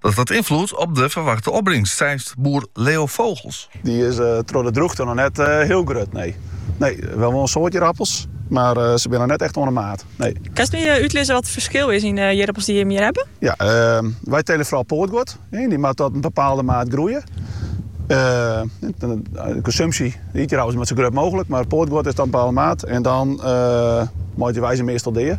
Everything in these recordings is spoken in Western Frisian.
Dat hat ynfloed op de ferwachte opbringst, seit boer Leo Vogels. Dy't troch de drûchte noch net hiel grut binne. Nee, we ha wol in soad jierappels, mar se binne noch net echt oan de maat, nee. Kinst my útlizze wat it ferskil is yn de jierappels dy't jimme hjir hawwe? Ja, wy tele fral poatguod. Dy moat tot in bepaalde maat groeie. De konsumpsje, de ytjierappels, dy moatte sa grut mooglik, mar it poatguod is tot in bepaalde maat en dan meitsje wy se meastal dea.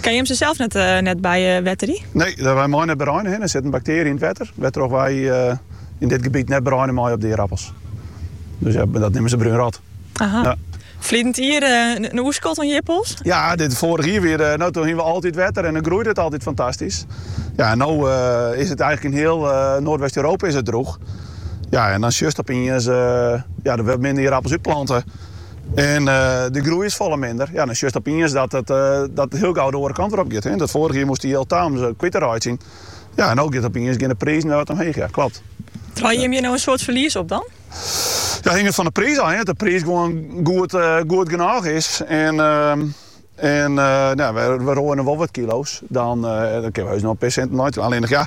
Kinne je him sels net, net bywetterje? Nee, wy meie net bereine hjir. Der sit in baktearje yn it wetter wêrtroch wy yn dit gebiet net bereine meie op de ierappels. Dus ja, dat neame se brúnrot. Aha. Ja. Ferline jier eh, in oerskot oan jirpels? Ja, dit foarich jier wer, eh, no doe hienen we altyd wetter en dan groeit it altyd fantastysk. Ja, no eh, is it eigenlik yn hiel Noardwest-Europa is it droech. Ja, en dan sjochst opeens, ja, der wurde minder jierappels útplante. En de groei is folle minder. Ja, dan sjochst opeens dat it dan hiel gau de oare kant wer op giet. Dat foarige jier moatst der jild tajaan om it kwyt te reitsjen. Ja, en no giet opeens gean de prizen wer wat omheech. Ja, klopt. Draaie jimme hjir no in soad ferlies op dan? Ja, hinget fan de priis ôf. As de priis gewoan goed, goed genôch is en en nou, we, we roaie wol wat kilo's, dan, dan kinne we heus noch in pear sinten neitwaan. Allinne no ja.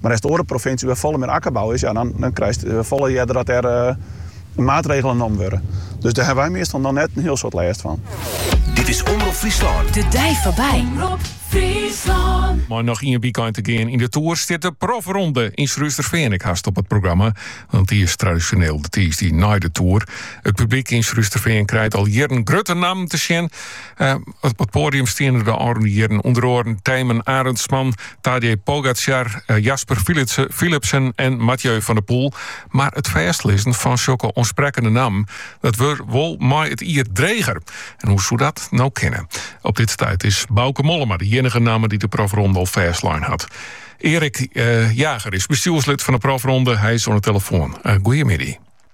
Mar as de oare provinsjes wêr't folle mear akkerbou is, ja, dan krijst folle earder dat der maatregelen nommen wurde. Dus dêr ha wy meastal noch net in hiel soad lêst fan. Dit is Omrop Fryslân. De dei foarby. Omrop Fryslân. Mei noch ien wykein te gean yn de Tour stiet de profronde yn Surhústerfean ek hast op it programma, want dy is tradisjoneel de tiisdei nei de Tour. It publyk yn Surhústerfean krijt al jierren grutte nammen te sjen. Eh, op het podium stienen de ôfrûne jierren ûnder oaren Tijmen Arendsman, Tadej Pogacar, eh, Jasper Philipsen en Mathieu van der Poel. Maar het fêstlizzen fan zulke ontsprekkende namen, dat wordt wol mooi het ier dreger. En hoe zou dat nou kennen? Op dit stuit is Bauke Mollema de enige namen die de profronde al fêstlijn had. Erik eh, Jager is bestuurslid van de profronde. Hij is aan de telefoon. Uh, goedemiddag.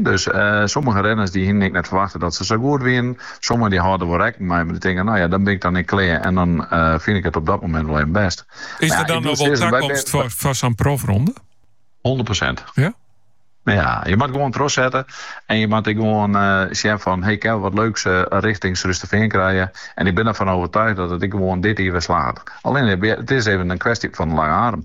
Dus sommige renners dy hienen ek net ferwachte dat se sa goed wienen. Sommigen dy hâlden der wol rekken mei, mar dy tinke, no ja, dan bin ik dan ek klear en dan fyn ik it op dat momint wol even bêst. Is der dan noch wol takomst foar sa'n profronde? Hûndert persint. Ja? Ja, je moatte gewoan trochsette en je moatte ek gewoan sjen fan, hey, kinne we wat leuks richting Surhústerfean krije. En ik bin der fan overtuigd dat it ek gewoan dit jier wer slagget. Allinne, it is even in kwestje fan de lange azem.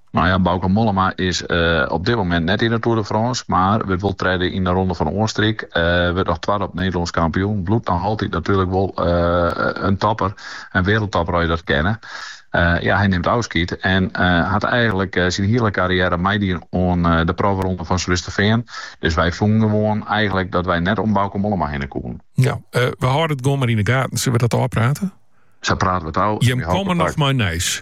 Nou ja, Bauke Mollema is op dit moment net yn de Tour de France, mar wurdt wol tredde yn de Ronde fan Oastenryk. Wurdt noch twadde op Nederlânsk kampioen. Bliuwt noch altyd natuerlik wol in topper, in wereldtopper as je dat kinne. Ja, hy nimt ôfskied en hat eigenlik syn hiele karriêre meidien oan de profronde fan Surhústerfean. Dus wy fûnen gewoan eigenlik dat wy net om Bauke Mollema hinne koenen. Ja, we hâlde it gewoan mar yn de gaten. Sille we dat ôfprate? Sa prate we it ôf. Jim komme noch mei nijs.